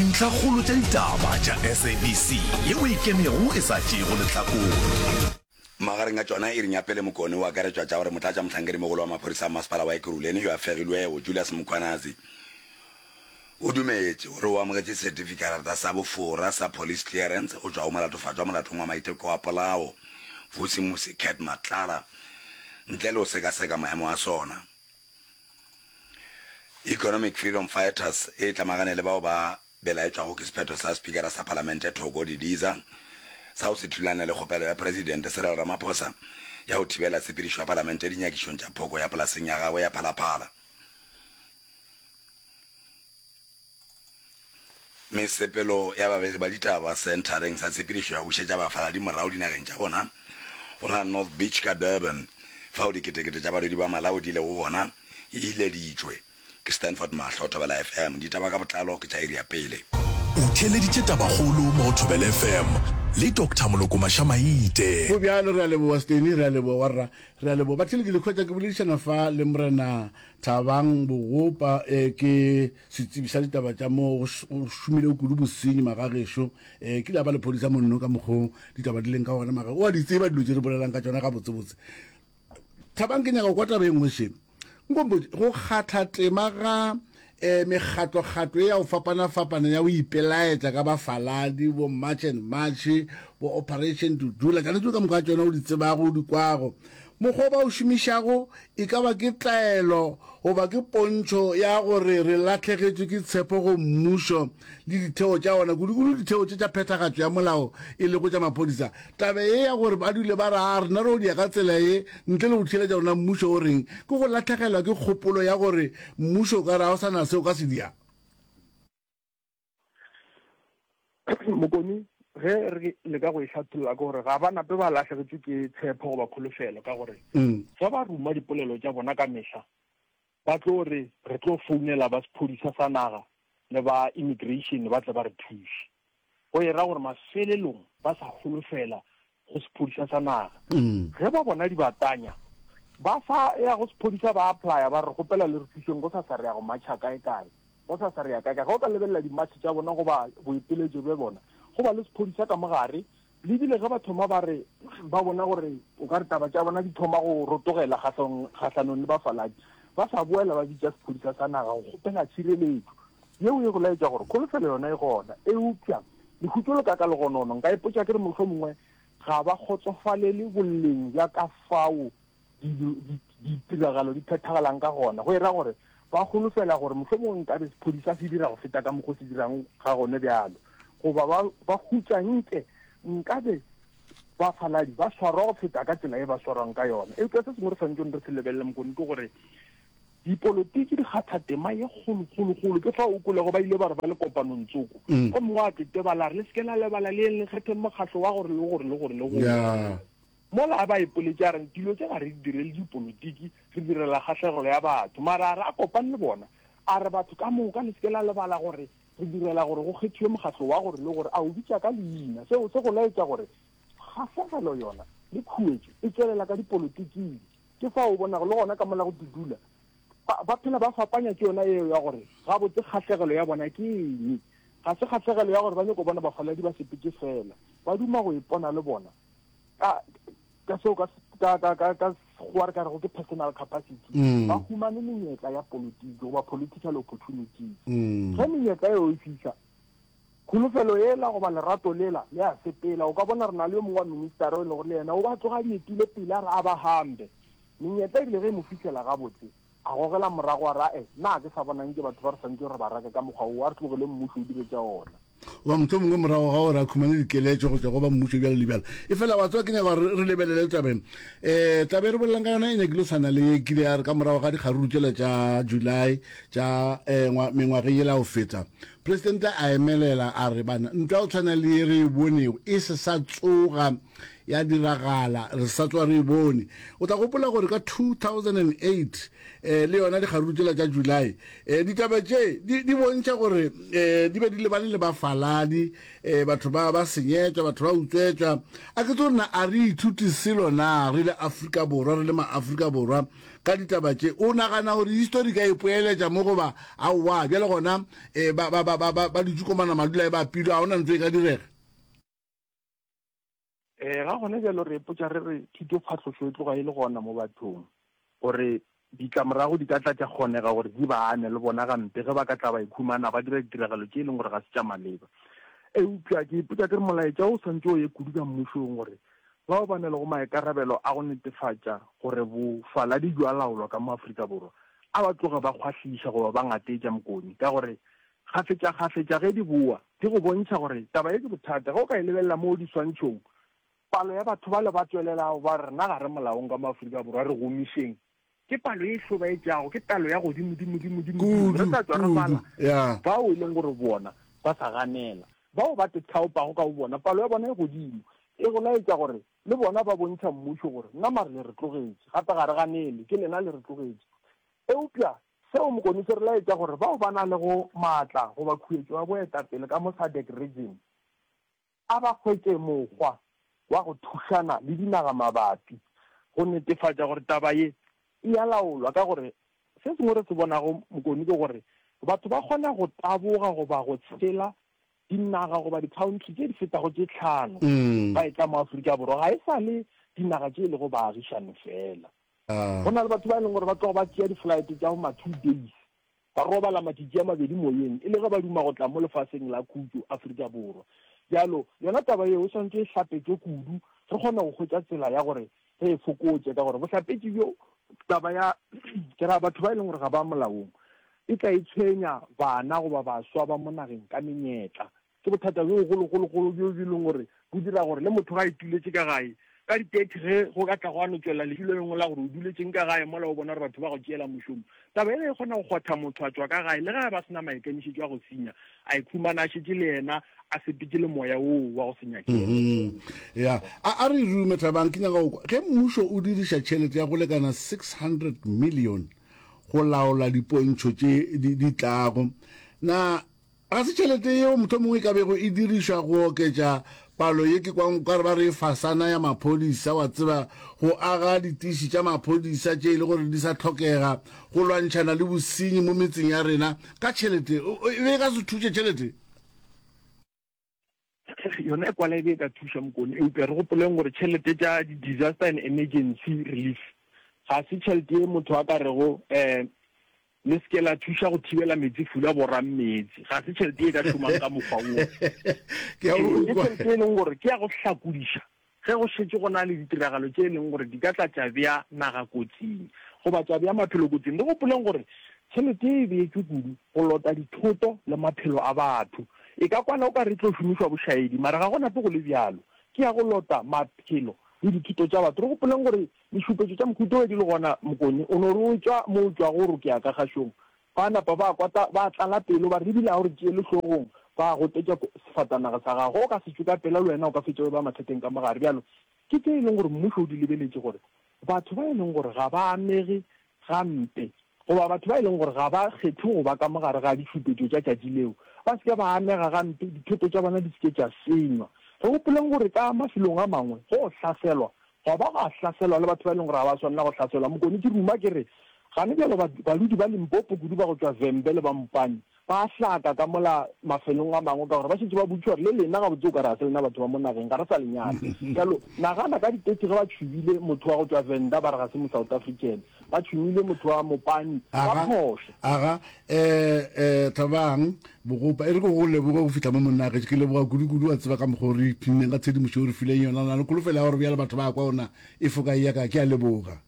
Dintlhakgolo tša ditaba tša SABC yeo e kenego e sa tšeego lehlakore. Magareng a tšona e re Nyapele Mokone o akaretšwa tša gore motlatšamohlankedimogolo wa maphodisa a masepala wa Ekurhuleni yo a fegilwego, Julius Mkhwanazi, o dumetše gore o amogetše setifikarata sa bofora sa police clearance go tšwa go molatofatšwa molatong wa maiteko wa polao, Vusimusi Cat Matlala, ntle le go sekaseka maemo a sona. Economic Freedom Fighters e tlamagane le bao ba belaetšwago ke sephetho sa Spikara sa Palamente Thoko Didiza sa go se thulane le kgopelo ya Presidente Cyril Ramaphosa ya go thibela tshepedišo ya Palamente dinyakišong tša phoko ya polaseng ya gagwe ya Phala Phala. Mesepelo ya babegi ba ditaba Senthareng sa Tshepedišo ya go Bušetša Bafaladi Morago Dinageng tša Bona, go la North Beach ka Durban, fao diketekete tša balwedi ba Malawi di lego gona, e ileditšwe. Ke Stanford Mahlo, Thobela FM. Ditaba ka botlalo ke tša iri ya pele. O theeleditše tabakgolo mo go Thobela FM le Doctor Moloko Mašamaite. Go bjalo, re a leboga Steny, re a leboga warra, re a leboga batheeletši. Lekhwetša ke boledišana fa le Morena Thabang Bogopa e ke setsebi sa ditaba tša mo go šomile o kudu bosenyi magagešo e ke la ba lephodisa monno ka mokgo ditaba di leng ka gona maga o a di tseba dilo tše re bolelang ka tšona ga botsebotse Thabang ke nyaka kwa taba e nngwe šeng nkombo go kgatha tema ga eh mekgatlo-kgatlo e ya go fapana-fapana ya go ipelaetša ka bafaladi bo march and march bo operation dudula kana dilo ka moka tsona o di tsebago o di kwago mokgwa ba o šomišago E ka ba ke tlaelo goba ke pontšho ya gore re lahlegetšwe ke tshepo go mmušo le ditheo tša ona, kudukudu ditheo tše tša phethagatšo ya molao e lego tša maphodisa. Taba ye ya gore ba dule ba re, A rena re o dia ka tsela ye ntle le go theeletša rena mmušo o reng, ke go lahlegelwa ke kgopolo ya gore mmušo o ka re ga go sa na se o ka se diago. Mokoni, ge re leka go e hlatholla ke gore ga ba nape ba lahlegetšwe ke tshepho goba kholofelo ka gore fa ba ruma dipolelo tša bona ka mehla ba tlo re re tlo founela ba sephodisa sa naga le ba immigration ba tle ba re thuše. Go e ra gore mafelelong ba sa holofela go sephodisa sa naga. Ge ba bona dibatanya, ba sa ya go sephodisa ba applaya ba re, Kgopela le re thuseng go sa sa re ya go matšha kae kae, go sa sa re ya kae kae. Ge o ka lebelela dimatšhe tša bona goba boeteletšo bja bona, go ba le sephodisa ka mo gare. Le ebile ge ba thoma ba re ba bona gore o ka re taba tša bona di thoma go rotogela kgahlanong le bafaladi, ba sa boela ba bitša sephodisa sa naga go kgopela tšhireletšo. Yeo e go laetša gore kholofelo yona e gona, eupša Lehutšo le ka ka legonono, nka ipotša ke re mohlomongwe ga ba kgotsofalele boleng bja ka fao dilo, di, ditiragalo di phethagalang ka gona, go e ra gore ba holofela gore mohlomongwe nkabe sephodi sa se dira go feta ka mokgwa o se dirang ga gone bjalo, goba ba, ba hutša nke nkabe bafaladi ba swarwa go feta ka tsela e ba swarwang ka yona. Eupša se sengwe re swanetšeng re se lebelele, Mokone, ke gore Dipolotiki di kgatha tema ye kgolo, kgolokgolo ke fao o kwelego ba ile ba re ba le kopanong tsoko, gomme gwa tetebala a re, Le se ke la lebala le yeng, le kgetheng mokgatlo wa gore le gore le gore le gore. Mola a ba ipoletše a re, Dilo tše ga re di direle dipolotiki, re direla kgahlegelo ya batho. Mara a re, A kopane le bona, a re, Batho ka moka, le se ke la lebala gore re direla gore go kgethiwe mokgatlo wa gore le gore, a o bitša ka leina. Seo se go laetša gore kgahlegelo yona le khuetšo e tšwelela ka dipolotiking. Ke fao o bonago le gona ka mola go dudula ba, ba phela ba fapanya ke yona yeo ya gore gabotse kgahlegelo ya bona ke eng. Ga se kgahlegelo ya gore ba nyoko bona bafaladi ba sepetše feela, ba duma go ipona le bona ka, ka seo ka, ka, ka, ka, ka Sekgowa re ka rego ke personal capacity. Mm. Ba humane menyetla ya politiki goba political opportunities. Mm. Ge menyetla eo e fihla, Kholofelo yela goba lerato lela le a sepela. O ka bona re na le yo mongwe wa ministara yo e lego le yena o be a tloga a di etile pele a re a ba hampe. Menyetla e bile ge e mo fihlela gabotse, a gogela morago a re, A-e, na ga ke sa bona nke batho ba re swantšego re ba rake ka mokgwa wo? A re tlogeleng mmušo o dire tša ona. Goba mohlomongwe morago ga gore a khumane dikeletšo go tšwa go ba mmušo bjalo le bjalo. Efela wa tseba, ke nyaka gore re lebelele taba ye. E, taba ye re bolelang ka yona e nyakile go swana le ye e kile ya re ka morago ga dikgaruru tšela tša July tša, e, mengwageng yela ya go feta. Presidente a emelela a re, Bana, ntwa go tshwana le ye re e bonego e se sa tsoga ya diragala, re sa tswa re e bone. O tla gopola gore ka 2008 um le yona dikgaruru tšela tša July, um ditaba tše di, di bontšha gore um di be di lebane le bafaladi, um batho ba, ba senyetšwa, batho ba utswetšwa. A ke tso rena a re ithuti selo na, re le Afrika Borwa, re le ma-Afrika Borwa? ka ditaba tše. O nagana gore histori ka e poeletša mo goba aowa? Bjale gona e, ba, ba, ba, ba, ba, ba dutše komana madula e ba pilo, ga gona ntse e ka direga. E, ga gone bjalo re epotša re re thuto phatlošo e tloga e le gona mo bathong gore ditlamorago di ka tla tša kgonega gore di ba ame le bona gampe ge ba ka tla ba ikhumana ba dira ditiragalo tše e leng gore ga se tša maleba. Eupša ke ipotša ke re molaetša o swantse o ye kudu ka mmušong gore bao ba na lego maikarabelo a go netefatša gore bofaladi bjo a laolwa ka mo Afrika Borwa a ba tloge ba kgwahliša goba ba ngateetša Mkoni ka gore kgafetšakgafetša ge di bowa di go bontšha gore taba ye ke bothata. Ge o ka e lebelela mo diswantšhong, palo ya batho bale ba tswelelago ba re rena ga re molaong ka mo Afrika Borwa, re gomišeng. Ke palo ye e hlobaetšago, ke palo ya godimo, dimo, dimo, dimo, dimo. Re Kudu, tla tšwa re bala kudu. Ya. bao e leng gore bona ba sa ganela, bao ba te thaopago ka bobona. Palo ya bona e godimo e go laetša gore le bona ba bontšha mmušo gore, Nna mare le re tlogetše, gape ga re ganele, ke lena le re tlogetše. Eupša seo mokone se re laetša gore bao ba nalego maatla goba khuetšo ya boetapele ka mo Sadec Region, A ba hwetše mokgwa wa go thušana le dinaga mabapi go netefatša gore taba ye e a laolwa, ka gore se sengwe re se bonago mokoni ke gore batho ba kgona go taboga goba go tshela dinaga goba dikhaontri tše di fetago tše tlhano ba etla mo Afrika Borwa. Ga e sa le dinaga tše e lego baagišani feela. Go na le batho ba e leng gore ba tloga ba tšea diflaete tša bo ma two days Ba robala matšitši a mabedi moyeng e le ge ba duma go tla mo lefaseng la khutšo, Afrika Borwa. Bjalo, yona taba yeo e swanetše e hlapetšwe kudu, re kgone go hwetša tsela ya gore re e fokotše, ka gore bohlapetši bjo taba ya, ke ra, batho ba e leng gore ga ba molaong e tla e tshwenya, bana goba baswa ba mo nageng, ka menyetla. Ke bothata bjo bogologologolo bjo bjo e leng gore bo dira gore le motho ge a ituletše ka gae ka di thirty ge go ka tla gwa no tšwelela lehu le lengwe la gore o duletšeng ka gae mola o bona gore batho ba go tšeela mošomo, taba e be e kgona go kgwatha motho a tšwa ka gae le ge a be a se na maikemišetšo a go senya, a ikhumana a šetše le yena a sepetše le moya woo wa go se nyakele. Mm-hmm. Ya, a, a re rume Thabang, ke nyaka go kwa. Ge mmušo o diriša tšhelete ya go lekana 600 million go laola dipontšho tše di, di tlago, na Ga se tšhelete yeo mohlomongwe e ka bego e dirišwa go oketša palo ye ke kwang okare ba re fasana ya maphodisa, wa tseba, go aga ditiši tša maphodisa tše e le gore di sa hlokega go lwantšhana le bosenyi mo metseng ya rena ka tšhelete. E be e ka se thuše tšhelete. yona e kwala e be e ka thuša mokone eupša re gopoleng gore tšhelete tša di-disaster and emergency relief ga se tšhelete e motho a ka rego um le se ke la thuša go thibela metsi fula borang metsi ga se tšhelete e ka šomang ka mokgwa wo ke tšhelete e leng gore ke ya go hlakodiša Ge go šetše go na le ditiragalo tše e leng gore di ka tla tša bea naga kotsing goba tša bea maphelo kotsing, re gopoleng gore tšhelete ye e beetšwe kudu go lota dithoto le maphelo a batho. E ka kwana o ka re e tlo šomišwa bošaedi, mara ga go nape go le bjalo. Ke ya go lota maphelo le dithoto tša batho. Re gopoleng gore ditšhupetšo tša mohuta wo di le gona mokone o no re o tšwa mo o tšwago o re o ke ya ka kgašong, Ba napa ba kwata, ba tlala pelo, ba re, Ebile ga o re tšeele hlogong, ba gotetša sefatanaga sa gago, ge o ka se tšwe ka pela, le wena o ka fetša o eba mathateng ka mo gare. Bjalo, ke tše e lego gore mmušo o di lebeletše, gore batho ba e lego gore ga ba amege gampe, goba batho ba e lego gore ga ba kgethe go ba ka mo gare ga ditšhupetšo tša tšatši leo, ba se ke ba amega gampe, dithoto tša bona di se ke tša senywa. Re gopoleng gore ka mafelong a mangwe go hlaselwa Goba gwa hlaselwa le batho ba e leng gore ga ba swanela go hlaselwa. Mokone ke ruma ke re, Gane bjalo baludi ba Limpopo kudu ba go tšwa Vhembe le ba Mopani ba a hlaka ka mola mafelong a mangwe ka gore ba šetše ba boditšwe gore le lena gabotse o ka re ga se lena batho ba mo nageng, ga re sa le nyaka. Bjalo nagana ka di 30 ge ba tšhubile motho wa go tšwa Venda ba re ga se mo-South African. ba tšhumile motho wa mopani wa phoso aga eh eh tlabang bogopa e re go go leboga go fihla mo monna age ke leboga kudu-kudu wa tseba ka mokgwa o re phinneng ka tshedimošo o re fileng yona na le kholofela ya gore bjale batho ba kwa ona e foka e ya ka ke a leboga